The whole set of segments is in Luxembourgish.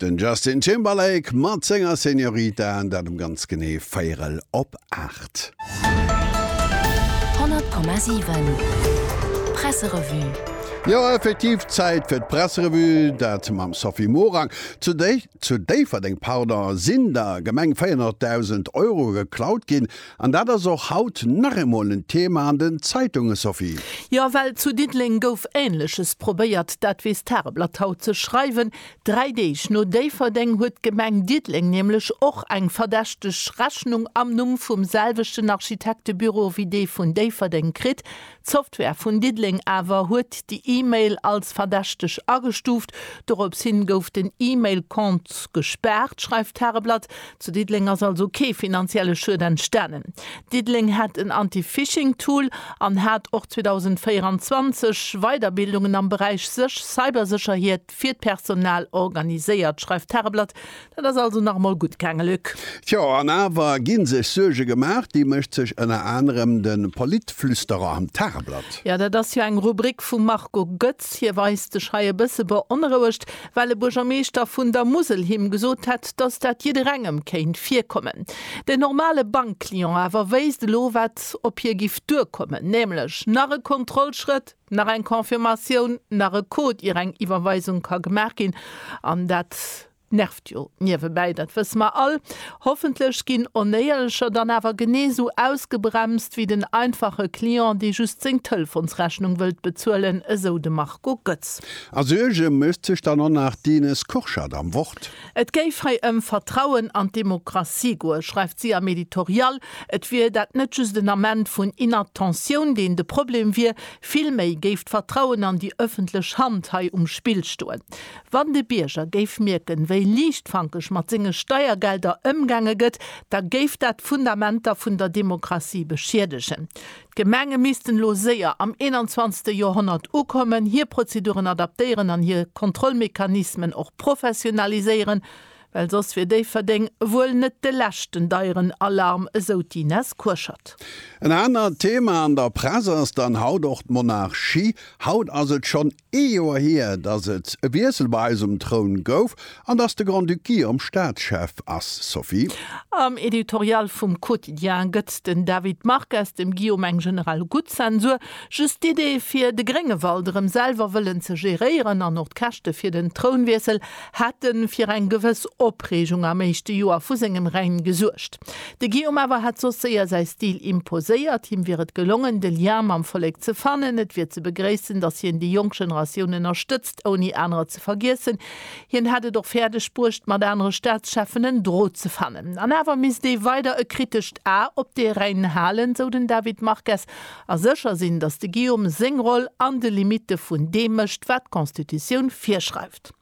Den Justin Timberlake mat senger Señorita, dat um ganz genee véierel op 8. 100,7 Presserevue. Jo effektiv Zäit fir d'Presserevue, dat mam Sophie Morang. Zu déi. Zu Déifferdeng, pardon, sinn der Gemeng 400.000 Euro geklaut ginn. An dat ass och haut nach eemol en Thema an den Zeitungen, Sophie. Jo, well zu Diddeleng gouf Änleches probéiert. Dat weess d'Tageblatt haut ze schreiwen. Dräi Deeg no Déifferdeng huet d'Gemeng Diddeleng nämlech och eng verdächteg Rechnung am Numm vum selwechten Architektebüro wéi dee vun Déifferdeng kritt. D'Software vun Diddeleng awer huet déi E-Mail als verdächteg agestuuft. Dorops hin gouf den E-Mail-Compte gespaart, schreift d'Tageblatt. Zu Diddeleng ass also kee finanzielle Schued entstanen. Diddeleng hätt en Anti-Phishing-Tool an hat och 2024 Weiderbildungen am Beräich Cybersécherhiet. Post fir d'Personal organiséiert, schreift d'Tageblatt. Dat ass also nach emol gutt gaange, Luc. Tjo, an awer gi sech Suerge gemaach. Déi mécht sech ënner anerem de Politflüsterer am Tageblatt. Jo, dat ass jo eng Rubrik vum Marco Goetz. Hie weist sech hei e bësse beonrouegt, well e Buergermeeschter vun der Musel him gesot hätt, datt dat jidderengem kéint virkommen. Den normale Bankclient awer wéisst elo, wat op hie giff duerkommen, nämlech nach e Kontrollschrëtt. Nach eng Confirmatioun, nach e Code ier eng Iwwerweisung ka gemaach ginn, an dat nervt jo niewebäi, dat wësse mer all. Hoffentlech ginn Onéierlecher dann awer genee sou ausgebremst wéi den einfache Client, dee just seng Telefonsrechnung wëllt bezuelen, esou de Marco Goetz. A Suerge mécht sech dann och nach d'Ines Kurschat am Wort. Et géif hei ëm Vertrauen an d'Demokratie goen, schreift si am Editorial. Et wier dat net just en Ament vun Inattentioun, deen de Problem wier, vill méi géif d'Vertrauen an déi ëffentlech Hand hei um Spill stoen. Wann de Bierger géif mierken, wéi liichtfankeg mat senge Steiergelder ëmgaange gëtt, da géif dat d'Fundamenter vun der Demokratie beschiedegen. D'Gemenge missten elo séier am 21. Joerhonnert ukommen, hir Prozeduren adaptéieren an hir Kontrollmechanismen och professionaliséieren, well soss wier Déifferdeng wuel net de leschten deieren Alarm, esou d'Ines Kurschat. En anert Thema an der Press ass dann haut och d'Monarchie. Haut ass et schonn Ee Joer hier, dass et e Wiessel bei eis um Troun gouf an dass de Grand-Duc Guillaume Staatschef ass, Sophie. Am Editorial vum Quotidien gëtt den David Marques dem Guillaume eng generell gutt Zensur. Just d'Idee, fir de Gréngewald erëm selwer wëllen ze geréieren an och d'Käschte fir den Trounwiessel hätte fir eng gewëss Opreegung am éischte Joer vu sengem Règne gesuergt. De Guillaume awer hätt soss séier säi Stil imposéiert. Him wier et gelongen, de Lien mam Vollek ze fannen. Et wier ze begréissen, datt hien déi jonk Generatioun ënnerstëtzt, ouni anerer ze vergiessen. Hien hätt et och fäerdeg bruecht, mat anere Staatscheffen en Drot ze fannen. An awer misst ee weider e kritescht A op de Rhäin halen, sou den David Marques, a sécher sinn, datt de Guillaume seng Roll an de Limitte vun deem mécht, wat d'Constitutioun virschreift.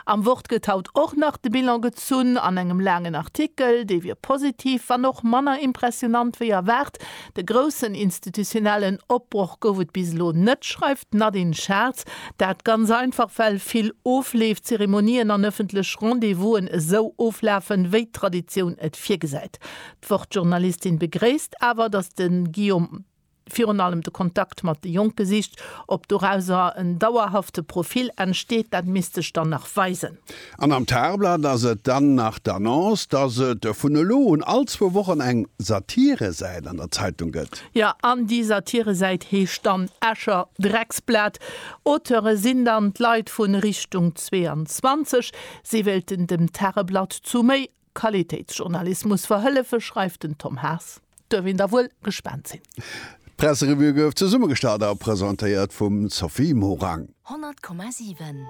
Am Wort gëtt haut och nach de Bilan gezunn, an engem laangen Artikel. Dee wier positiv, wann och manner impressionant wéi erwaart. De groussen institutionellen Opbroch gouf et bis elo net, schreift d'Nadine Schartz. Dat ganz einfach, well vill Ofleef, Zeremonien an ëffentlech Rendez-vous'en esou oflafen, wéi d'Traditioun et virgesäit. D'Wort-Journalistin begréisst awer, datt de Guillaume. virun allem de Kontakt mat de Jonke sicht. Ob dorauser en dauerhafte Profil entsteet, dat misst sech dann nach weisen. An am Tageblatt ass et dann nach d'Annonce, datt et vun elo un all zwou Wochen eng Satiresäit an der Zeitung gëtt. Jo, an déi Satiresäit heescht dann Escher Drecksblat. Auteure sinn dann d'Leit vu Richtung 22. Si wéilten dem Tageblatt zu méi Qualitéitsjournalismus verhëllefe, schreift den Tom Haas. Duerf een da wuel gespaant sinn. D'Presserevue gouf zesummegestallt a presentéiert vum Sophie Morang. 100,7.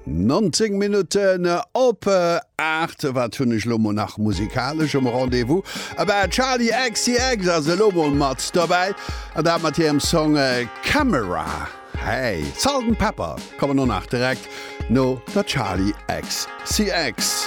19 Minutten op 8. Wat hunn ech elo mol nach musikalesch um Rendez-vous? Abä Charli XCX ass elo mol mat dobäi, an dat mat hirem Song Camera. Hey, Salt and Pepper kommen och nach direkt no der Charli XCX.